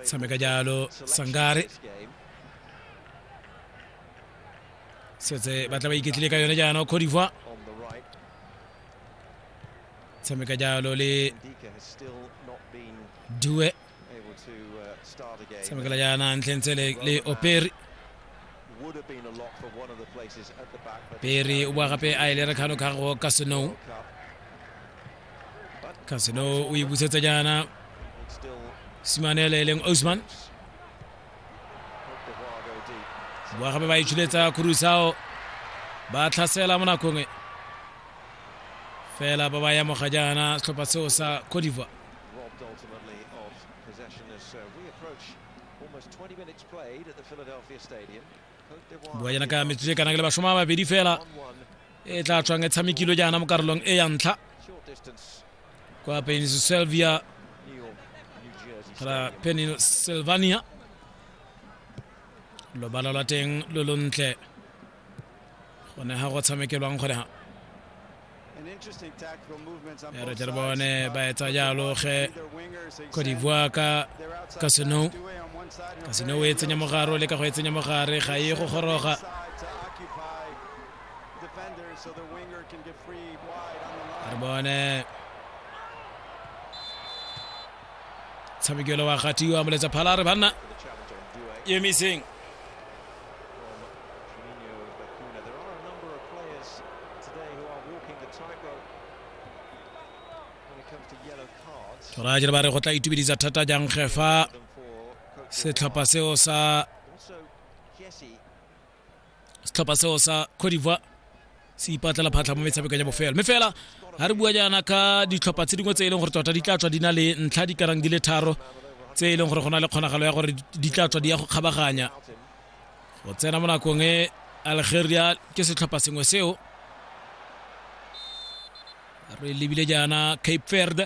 Sameka jalo Sangare setse ba tla ba iketlile ka yone jaanong Cote d'Ivoire tshameka jalo le due tshamekela jaana ntlheng tsele le operi peri o boa gape a e lere kgano kgago ka senow kasino o e busetsa jaana simanele e leng osman boa gape ba itshuletsa kurusao ba tlhasela mo nakong e fela ba ba yamoga jaana setlhopha seo sa cote d'ivoire bua jaana ka metsotso e kanang le basoma a babedi fela e tla tswang e tshamekilwe jaana mo karolong e ya ntlha kwa pennsylvania kala pennsylvania lobala lwa teng lo lontle gone ga go tshamekelwang gone ga ya re tle re bone ba etsa jalo ge cote d'ivoire ka casino casino o e tsenya mogare o leka go e tsenya mogare ga e go goroga re bone tshamekelo wa gatiwa moletsa phala re banna emiseng go raya jere ba re go tla itumedisa thata jang ge fa setlhopha seo sa setlhopha seo sa Cote d'Ivoire se ipatlela phatlha mo metshamekong ya bofelo mme fela ga re bua jaana ka ditlhopha tse dingwe tse e leng gore tota di tla tswa di na le ntlha di karang di le tharo tse e leng gore go na le kgonagalo ya gore di tla tswa di ya go kgabaganya go tsena mo nakong e algeria ke setlhopha sengwe seo re lebile jaana cape verde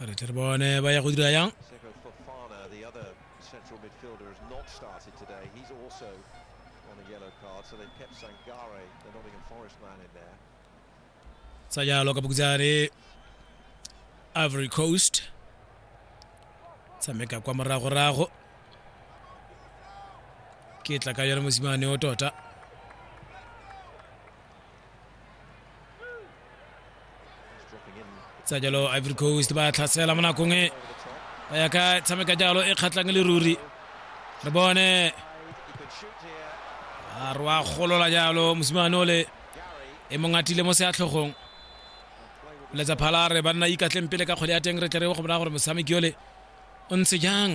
a re tle re bone ba ya go dira yang sa jalo ka bokutsane ivory coast tshameka kwa moragorago ke tla ka yone mosimane o tota tsa jalo ivory coast ba tlhasela mo nakong e ba ya ka tshameka jalo e kgatlhang le ruri re bone a re wa golola jalo mosimane ole e mong atile mo seatlhogong letsa phala re ba nna ikatleng pele ka kgwele ya teng re tle re go bona gore motshameki ole o ntse jang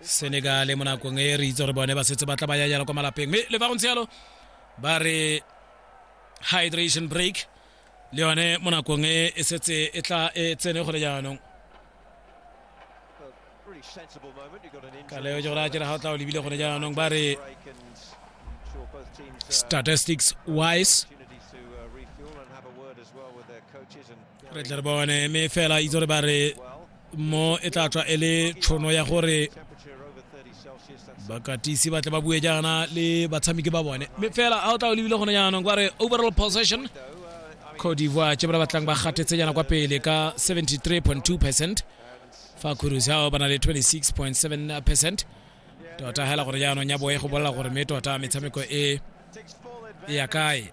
senegale mo nakong e re itse gore bone ba setse ba tla ba yayala kwa malapeng mme le fa go ntse yalo ba re hydration break le yone mo nakong e e setse e tla e tsene gole jaanong ka leo jo ra jera ga o tla o lebile gone jaanong ba re statistics wise re tle re bone mme fela itse gore ba re mo e tla tswa e le tshono ya gore bakatisi ba tle ba bue jaana le batshameki ba bone mme fela a o tla o lebile gone jaanong kwa re overall possession cote d'ivoire tse ba batlang ba gatetse jaana kwa pele ka 73.2 percent fa cruise ao ba na le 26.7 percent tota hela gore jaanong ya boe go bolela gore mme tota metshameko e e ya kae